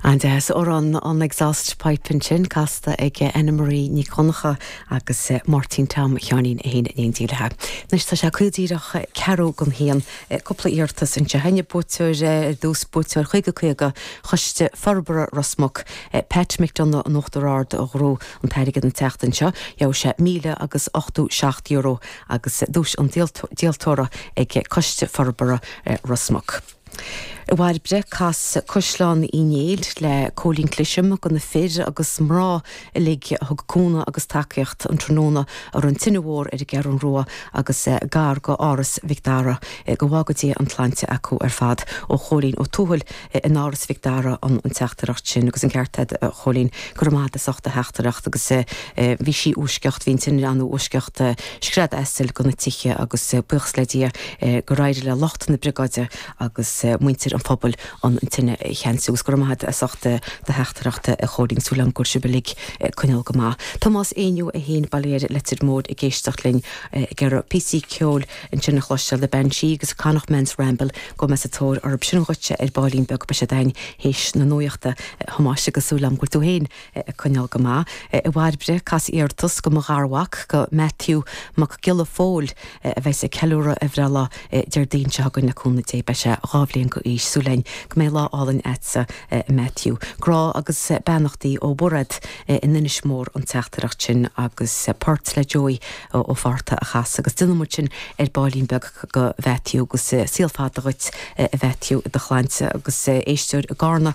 An-deas amhrán, an exhaust pipe ansin casta ag Ann Marie Nic Dhonncha agus Máirtín Tom Sheáinín fhéin in éindí léithi. Anois tá sé caol díreach ceathrú don haon, cúpla iarratas anseo a'inn, buaiteoir ar dtús, buaiteoir Caoga Caoga, Choiste Forbartha Ros Muc, Pat McDonagh in Uachtar Ard a ghnóthaigh an t-airgead an tseachtain seo, gheobhaidh sé míle agus ochtó seacht euro agus duais an díoltóra ag Coiste Forbartha Ros Muc. A Bhairbre cas Caisleán Uí Néill le Cóilín Clisham go na fir agus mná uilig a thug cúnamh agus tacaíocht an tráthnóna a raibh an tine mhór ar an gCeathrún Rua agus gar go Áras Mhic Dara go bhfága Dia an tsláinte acu ar fad ó Chóilín Ó Tuathail in Áras Mhic Dara an teachtaireacht sin agus an ceart a'd a Chóilín go raibh maith a'd as ucht do theachtaireacht agus bhí sí i bhfoisceacht bhí an tine ann i bhfoisceacht Scread asail go na tithe agus buíochas le Dia gur éirigh le lucht na briogáide agus muintir an phobail an tine a cheansú. Agus go raibh maith agat as ucht do theachtaireacht a Chóilín, súil agam go bhfuil sibh uilig ag coinneáil go maith. Tomás Éinniú an Baile Thiar Leitir Móir ag éisteacht linn ag iarraidh píosaí ceoil ansin a chloisteáil The Banshee agus Connacht Man's Ramble gabhfaidh mé sa tóir orthu sin dhuitse ar baillín beag beidh siad a'inn théis na nuaíochta. A Thomáis, agus súil agam go bhfuil tú féin ag coinneáil go maith. A Bhairbre, cas iarratas go mo gharmhac, go Matthew Mac Giolla Phóil, a bheas ag ceiliúradh a bhreithlá Déardaoin seo chugainn le cúnamh Dé. Beidh sé dhá bhliain go aois. Súil againn go mbeidh lá álainn agatsa a Matthew. Grá agus beannachtaí ó Mhairéad in Inis Mór an teachtaireacht sin agus port le Joey Ó Fátharta a chasadh agus déanfaidh muid sin ar baillín beag go Mhatthew agus saol fada dhuit a Mhatthew i do shláinte agus éisteoir i gCárna.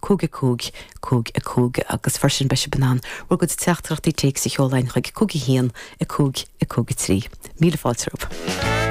cúig a cúig, cúig a cúig agus freisin beidh sibh in ann bhur gcuid teachtaireachtaí téacs a sheoladh chuig cúig a haon, a cúig, a cúig a trí. Míle fáilte romhaibh.